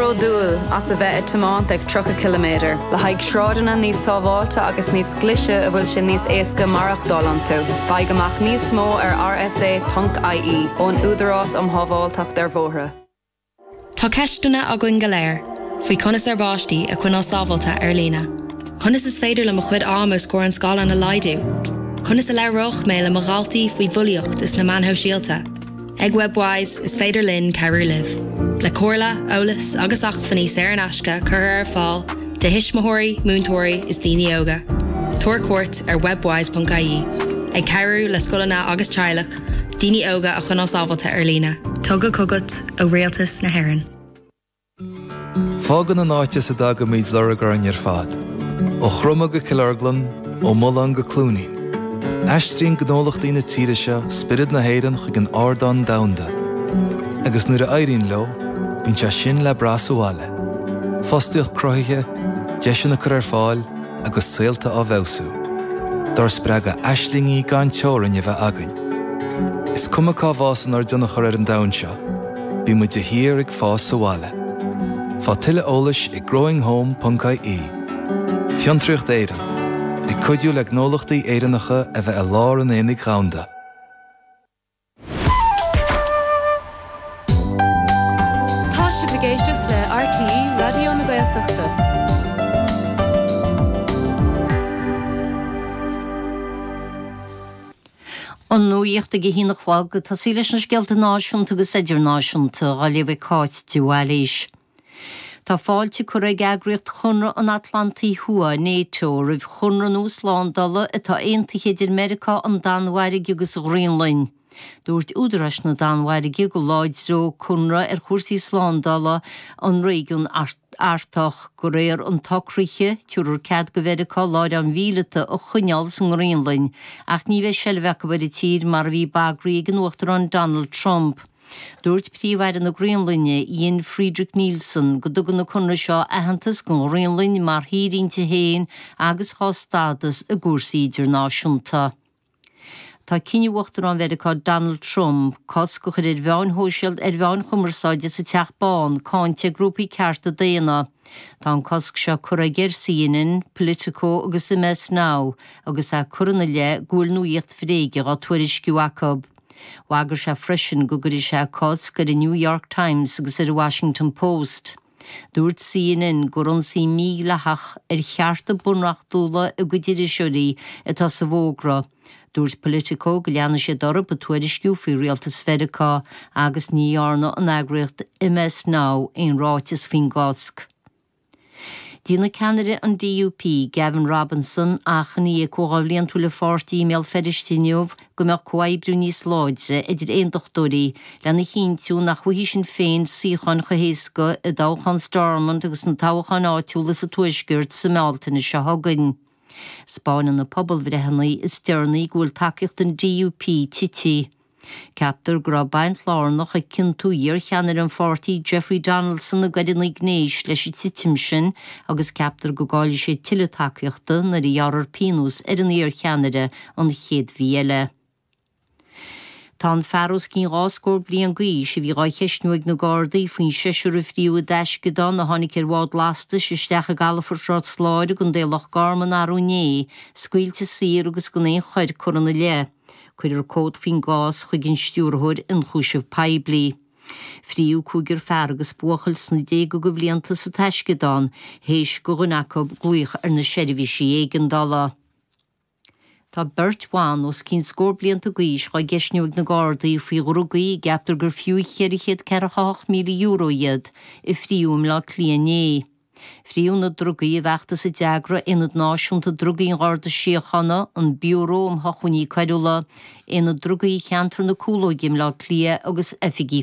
bródúil as a bheith ag tiomáint ag 30 ciliméadar le haghaidh sráideanna níos sábháilte agus níos glaise a bhfuil sé níos éasca maireachtáil iontu, faigh amach níos mó ar rsa.ie ón Údarás um Shábháilteacht ar Bhóithre. Tá ceisteanna againn go léir faoi conas ar bpáistí a choinneáil sábháilte ar líne, conas is féidir le mo chuid am os comhair an scáileáin a laghdú, conas a labhródh mé le mo dhaltaí faoi bhulaíocht is na meáin shóisialta. Ag Webwise, is féidir linn cabhrú libh le comhairle, eolas agus acmhainní saor in aisce a chur ar fáil do thuismitheoirí, múinteoirí is daoine óga. Tabhair cuairt ar webwise.ie, ag cabhrú le scoileanna agus teaghlach daoine óga a choinneáil sábháilte ar líne. Tugtha chugat ó Rialtas na hÉireann. Fágann an áit as a dtagaimid lorg orainn ar fad, ó Chromadh go Cill Orglan, ó Mulán go Cluainín. Aistríonn gnólachtaí na tíre seo spiorad na hÉireann chuig an ardán domhanda, agus nuair a éiríonn leo, bíonn sé sin le brath sa bhaile, fostaíocht cruthaithe, deiseanna curtha ar fáil agus saolta á bhfeabhsú, dár spreagadh aislingí gan teorainn a bheith againn. Is cuma cá bhfásann ár dtionchar ar an domhan seo, Bímid de shíor ag fás sa bhaile. Faigh tuilleadh eolais ag growinghome.ie Fiontraíocht Éireann, ag cuidiú le gnólachtaí Éireannacha a bheith i lár an aonaigh dhomhanda. Tá sibh ag éisteacht le RTÉ Raidió na Gaeltachta. An nuacht ag a haon a chlog, ag tosaí leis na scéalta náisiúnta agus idirnáisiúnta, á léamh ag Cáit de Bhailís. Tá fáilte curtha ag Eagraíocht Chonradh an Atlantaigh Thuaidh, Nato, roimh chonradh nua slándála atá aontaithe idir Meiriceá, an Danmhairg agus an Ghraonlainn. Dúirt údaráis na Danmhairge go láidreodh an conradh cúrsaí slándála an réigiúin Artaigh. Artach. De réir an tsocraithe, tabharfar cead go Mheiriceá láithreáin mhíleata a choinneáil sa nGraonlainn, ach ní bheidh seilbh acu ar an tír mar a bhí bagartha ag an Uachtarán Donald Trump. Dúirt Príomh-Aire na Graonlainne, Jens-Frederik Nielsen, go dtugann an conradh seo aitheantas don Ghraonlainn mar thír inti féin agus dhá stádas i gcúrsaí idirnáisiúnta. Tá cinneadh Uachtarán Mheiriceá Donald Trump cosc a chur ar mheáin shóisialta ar mheáin chumarsáide sa Teach Bán cáinte ag grúpaí cearta daonna. Tá an cosc seo curtha aige ar CNN, Politico agus MS Now agus é curtha ina leith go bhfuil nuaíocht bhréige á tuairisciú acu. Bhagair sé freisin go gcuirfeadh sé cosc ar an New York Times agus ar an Washington Post. Dúirt CNN gur ionsaí mídhleathach ar chearta bunreachtúla a gcuid iriseoirí atá sa bhfógra. Dúirt Politico go leanfaidh siad orthu ag tuairisciú faoi rialtas Mheiriceá agus ní dhearna an eagraíocht MS Now aon ráiteas faoin gcosc. Déanfaidh ceannaire an DUP, Gavin Robinson, achainí ag comhdháil bhliantúil a pháirtí i mBéal Feirste inniu go mbeadh comhoibriú níos láidre idir aondachtóirí lena chinntiú nach bhfaighidh Sinn Féin suíocháin chomh héasca i dtoghchán Stormont agus sna toghcháin áitiúla sa Tuaisceart sa mBealtaine seo chugainn. 'Spáineann na pobalbhreitheanna is deireanaí go bhfuil tacaíocht an DUP tite. Ceaptar go raibh baint lárnach ag ciontú iarcheannaire an pháirtí Jeffrey Donaldson i gcoireanna gnéis leis an titim sin agus ceaptar go gcaillfidh sé tuilleadh tacaíochta nuair a ghearrfar pionós ar an iarcheannaire an chéad mhí eile. Tá an fear os cionn dhá scór bliain d'aois, a bhí á cheisniú ag na Gardaí faoin seisear a fríothadh i dtaisceadán a tháinig ar bhád lastais isteach i gcalafort Ros Láir i gContae Loch Garman arú inné, scaoilte saor agus gan aon choir curtha ina leith. Cuireadh comhad faoin gcás chuig an Stiúrthóir Ionchúiseamh Poiblí. Fríothadh cúigear fear agus buachaill sna déaga de bhlianta sa taisceadán, théis do dhuine acu glaoch ar na seirbhísí éigeandála. Tá beirt bhan os cionn scór blianta d'aois á gceisniú ag na Gardaí faoi dhrugaí a gceaptar gur fiú €448,000 iad a fríothadh i mBleá Cliath inné. Fríothadh na drugaí i bhfeachtas a d'eagraigh Aonad Náisiúnta Drugaí an Gharda Síochána, an Biúró um Shochmhainní Coiriúla, Aonad Drugaí Cheantar na Cúlóige i mBleá Cliath agus Oifigí